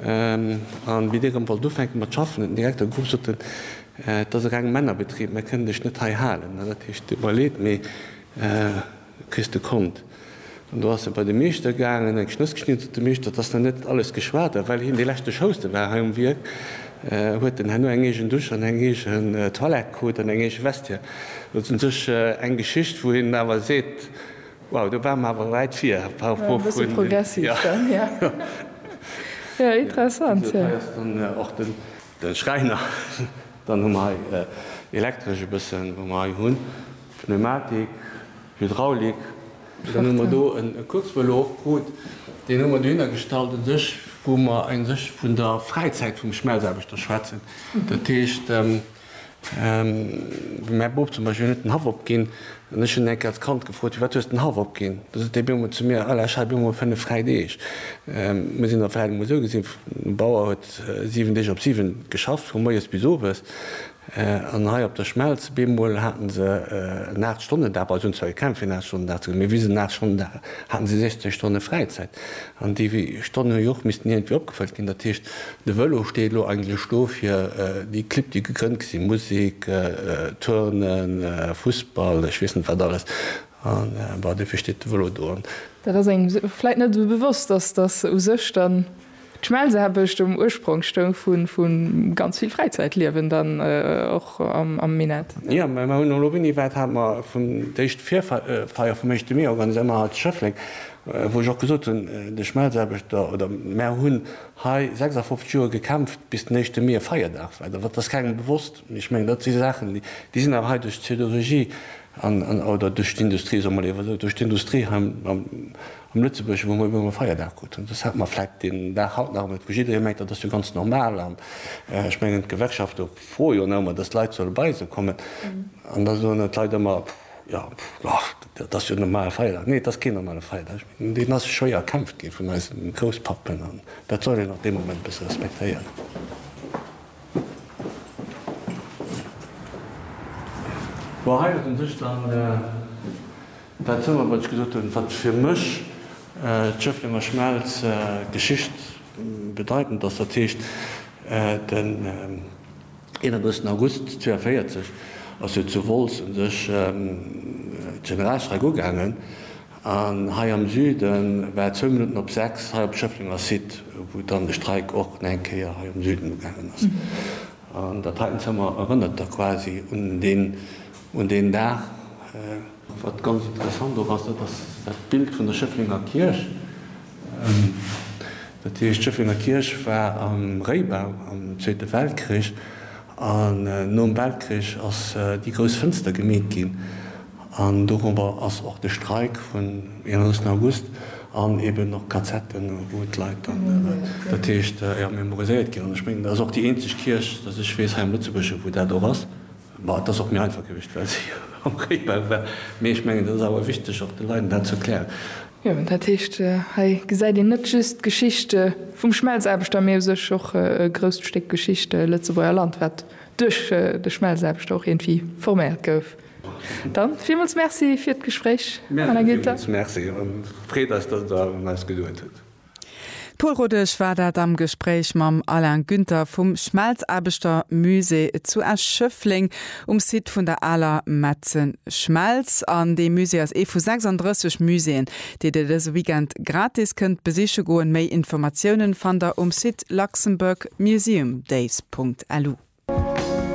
An wéi dee rëm wollt ufänken mat schaffen, huet den Direkter gewunnt sot en, Et ass e renge Männerbetrib, mer kënnen dech net hei halen. Dat heescht, du iwwerleet mee kriss de Kont. An do ass e bei de Meeschter gaangen, eng Schnëss geschnidden, sot de Meeschter, Et ass nach net alles geschwat. A well hien dee leschte Schouste war hei um Wierk, huet en herno eng eegen Dusch an eng eegen Toilette krut an eng eege Vestiaire. Dat ass un sech eng Geschicht, wou een awer seet, Wow, do war mer awer wäit vir par rapport vun. E bësse progressiv dann, jo. Jo, interessant, jo. Hei ass dann och de Schräiner. Dann hu mer hei Elektresch e bëssen, wou mer hei hunn Pneumatik, Hydraulik. Dann hu mer do e Kurzvëlo och krut. Deen hu mer dohinner gestallt u sech, wou mer u sech vun der Fräizäit vum Schmelzaarbechter schwätzen. Dat heescht. Wou mäi Bop zum Beispill, hien huet den Haff opginn an ech hunn eng Kéier als Kand gefrot, Firwat hues de den Haff opginn? Da sot dee Biergmol zu mir, Ala, ech hat elo mol fënnef fräi Deeg. Mir sinn der Fräi emol esou gesinn, de Bauer huet siwen Deeg op siwen geschafft, vu moies bis owes. An hei op der Schmelz op eemol haten se en Aacht-Stonnen-Dag, bei eis hunn se zwar gekämpft fir en Aacht-Stonnen-Dag ze kréien, mee wéi se den Aacht-Stonnen-Dag haten, hate se 16 Stonne Fräizäit. An déi Stonnen hu jo och missten iergendwéi opgefëllt ginn. Dat heescht, De Vëlo steet elo eigentlech do fir déi Clibb, déi gegrënnt gi sinn, Musek, Turnen, Fussball, ech weess net wat alles, an bon, dofir steet de Vëlo do. An. Dat ass engem vläit net esou bewosst, dass dass u sech dann d'Schmelzeherbescht um Ursprong stoung vu ganz vill Fräizäitliewen dann och am Minett. Jo, mä mer hunn elo, wéini, wat hat mer vun d'éischt Virfeier vum éischte Mee organiséiert? Mer hat Schëffleng. Wou ech och gesot hunn, de Schmelzaarbechter oder mär hunn hei 56 Joer gekämpft, bis den Éischte Mee e Feierdag war. Dat ass kengem bewosst. Mee ech mengen, dat si Saachen, déi sinn awer hei duerch d'Siderurgie an, oder duerch d'Industrie, soe mer léiwer esou, duerch d'Industrie hei am Lëtzebuergeschen, wou mer ëmmer e Feierdag kruten. Dës hat mer vläicht deen Dag haut nach net, wou jidderee mengt, dat ass jo ganz normal. An ech mengen, d'Gewerkschafte froe jo nach ëmmer, datt d'Leit solle bei se kommen. An da soen d'Leit ëmmer. Jo, och, dat ass jo en normale Feierdag. Nee, et ass keen normale Feierdag. Deen ass schwéier erkämpft gi vun eisen Grousspappen an dat soll een och dee Moment bësse respektéieren. Bon, hei huet e sech dann dat zougeholl, wat ech gesot hunn, wat fir mech d'Schëfflenger Schmelz geschichtbedeitend ass, dat heescht den, 31 August 42 ass jo zu Wolz un sech d'Generalstreik ugaangen an hei am Süden war et zwou Minutten op 6 hei op Schëfflenger Site wou dann de Streik och nach eng Kéier hei am Süden ugaangen ass. An dat heiten Zëmmer erënnert da quasi un deen Dag. Wat ganz interessant och ass, dat ass dat Bild vun der Schëfflenger Kierch. Dat heescht, d'Schëfflenger Kierch war am Réibau am Zweete Weltkrich an nom Weltkrich ass déi grouss Fënster gemeet ginn an dorobber ass och de Streik vun 31 August an eben och Kazetten, wou d'Leit dann dat heescht, jo, memoriséiert ginn. An ech mengen, dat ass och déi eenzeg Kierch, datt ech weess, hei am Lëtzebuergesche wou dat och ass. Bon, et ass och méi einfach gewiescht, well si jo am Réibau war. Mee ech mengen, et ass awer wichteg, och de Leiden dat ze erklären. Jo, dat heescht, hei gesäit een net just d'Geschicht vum Schmelzaarbechter, mee u sech och e grousst Stéck Geschicht Lëtzebuerger Land, wat duerch de Schmelzaarbechter och iergendwéi forméiert gouf. Dann villmools Merci fir d'Gespréich, Anna Günther. Villmools Merci, an et freet eis, datt et der un eis geduet hutt. D'Pol Rodesch war dat am Gespréich mam Alain Günther vum Schmelzaarbechter Musée zu Esch-Schëffleng um Site vun der aler Metze Schmelz. An dee Musée ass ee vu 36 Muséeën, déi Dir dëse Weekend gratis kënnt besiche goen. Méi Informatiounen fannt Der um Site luxembourgmuseumdays.lu.